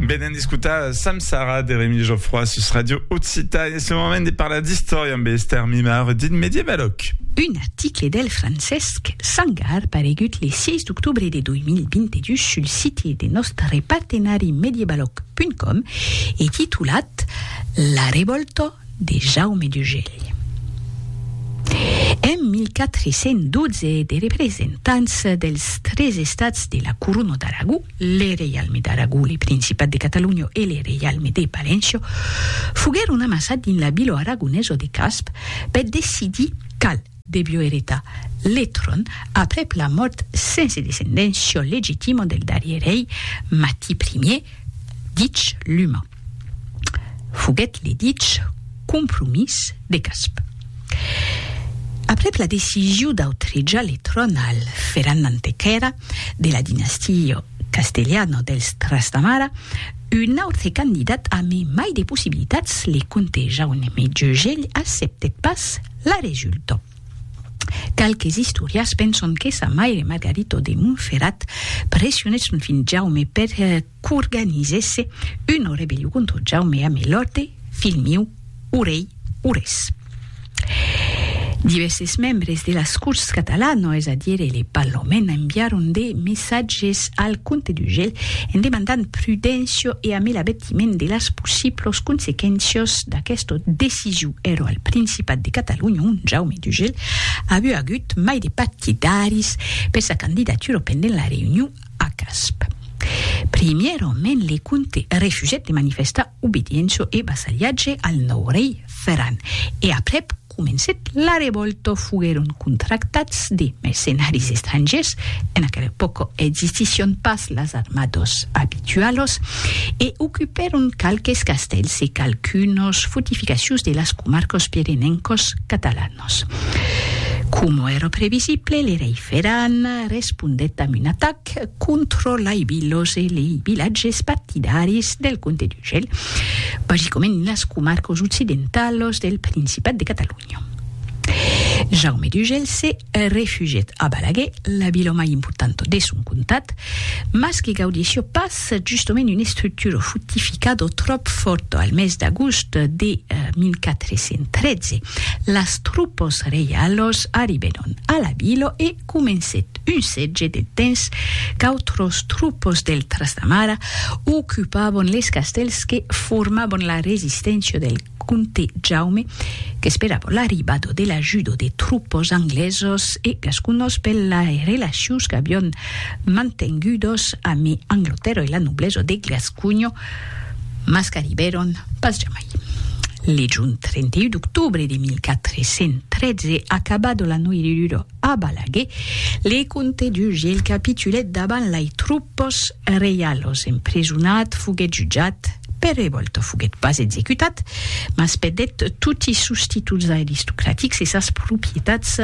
Venen d'escutar Sam Sara de Remi Geoffroy sus Radio Occità. En ce moment de parlar d'istòria amb Esther Mimar dit Medievaloc. Un article del Francesc Sangar paregut le 6 d'octobre de 2022 sul site de nòstre partenari medievaloc.com e titulat La revòlta de Jaume d'Ugèlh. En 1412 de representants dels tres estats de la Corona d'Aragó, le Reialme d'Aragó, le Principat de Catalonha e le Reialme de Paléncia, foguèron amassats dins la vila aragonesa de Casp per decidir qual devió eretar le tron aprèp la mòrt sense descendéncia legitima del darrier rei Mati Ier, dich Luma. Foguèt le dich Compromís de Casp. Aprèp la decision d'autrejar le tron al Ferran Antequèra de la dinastia castelhana dels Trastamara, un autre candidat amé mai de possibilitats, le comte Jaume Jegell, acceptèt pas La resulta. Qualques istorias penson que sa maire Margarito de Montferrat pressionèt son filh Jaume per qu'organizèsse una rebellion contra Jaume a Melòrte, filh miu, o rei Ures. Divèrses membres de las Corts catalanas, es a dire le Parlament, enviaron de messatges al comte d'Ugèl en demandant prudéncia e a Melavet patiment de las possiblos consequéncias d'aquesta decision ero al Principat de Catalonha ont Jaume Dugel a avut agut mai de partidaris per sa candidatura pendent la reünion a Casp. Primièrament le comte refusèt de manifestar obediéncia e vassalhatge al nòu rei Ferran e aprèp, Comencèt la revòlta foguèron contractats de mercenaris estrangièrs, en aquela epòca existission pas las armadas abitualas, e ocupèron qualques castèls e qualqu'unas fortificacions de las comarcas pirenencas catalanas. Coma èra previsible, le rei Ferran respondèt amb un atac, que controlaivi los e lei vilatges partidaris del comte d'Urgell, basicoment las comarcas occidentalas del Principat de Catalonha. Jaume d'Urgell se refugièt a Balaguer, la vila mai importanta de son comtat, mas que gaudissió pas justament una estructura fortificada tròp fòrta. Al mes d'agost de 1413, las tropas reialas arribèron a la vila e, comencèt un sètge de temps qu'autros tropos del Trastamara ocupavon les castèls que formavon la resisténcia del comte Jaume qu'esperavon l'arribada de l'ajuda de tropos anglesos e gasconos per las relacions qu'avion mantengudas amb Anglatèrra e la noblesa de Gasconha mas qu'arribèron pas jamai. Le jorn 31 d'octobre de 1413, acabada la noiridura, A Balaguer, le comte d'Uge el capitulèt davant lai troupes reialos, emprisonat, foguèt jutjat, per revòlta foguèt pas executat, mas perdèt toti sos títols aristocratics e sas propietats,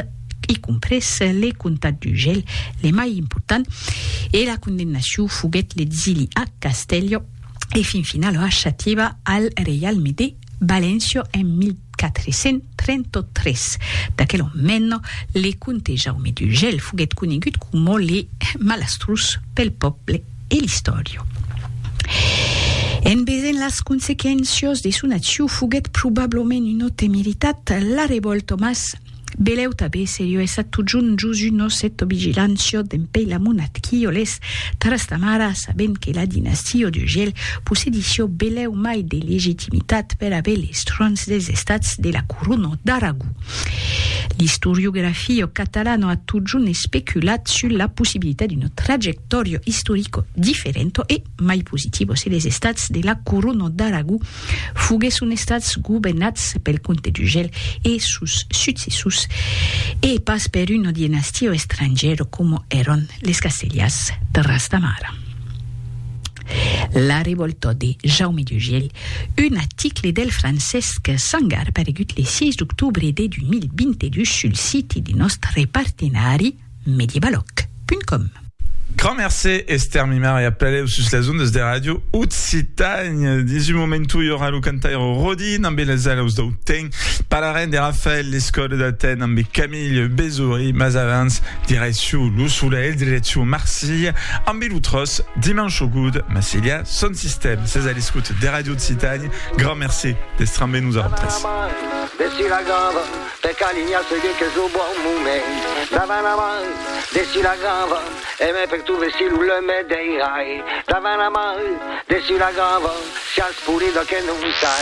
y compres le comtat d'Ugel, le mai important, e la condemnacion foguèt l'exili a Castèlho e fin finala a Xativa al reialme de. Valencio en 1433. D'aquel òn mèn, le comte Jaume d'Urgell foguèt conegut coma le malastrós pel pòble e l'istòria. En vesent las consequéncias de son accion foguèt probablament un autemeritat, la revòlta mas Beleu tabé serio essa totjun Josu nos eto vigilant sio dempei la monat quio les taras ta mara sabent que la dinastio de gel possedi sio beleu mai de legitimitat per aver les trons des estats de la corono d'Aragó. L'istoriografio catalano a totjun especulat sus la possibilitat d'uno trajectorio istorico differento e mai positivo se les estats de la corono d'Aragó foguèsson estats governats pel comte d'Urgell e sos successors e pas per una dinastia estrangièra coma èran les Castellars de Ras de Mar. La revòlta de Jaume d'Urgell, un article del Francesc Sangar paregut le 6 d'octobre de 2022 sul siti de nòstre partenari, mediebaloc.com. Grand mercé, Esther Mimar, e apeleu sus las ondas de Radio Occitània. Dins un momentu, i aurà lo cantaire Rodin ambe las alaus dau ten. Parlarem de Rafael Lescot d'Aten ambe Camille Bezory, mas avans, direcciu lo solelh, direcciu Marsilha, ambe lo tròç Dimanche au goût, Marsilha, son sistèm. Sètz a l'escòt de Radio Occitània. Grand mercé d'èstre ambe nosautres. Per calinha se dit qu'es lo bon moment Davant la mar, dessus la grava E me perturbe si lo lum me deirai Davant la mar, dessus la grava Siás pulida que non sai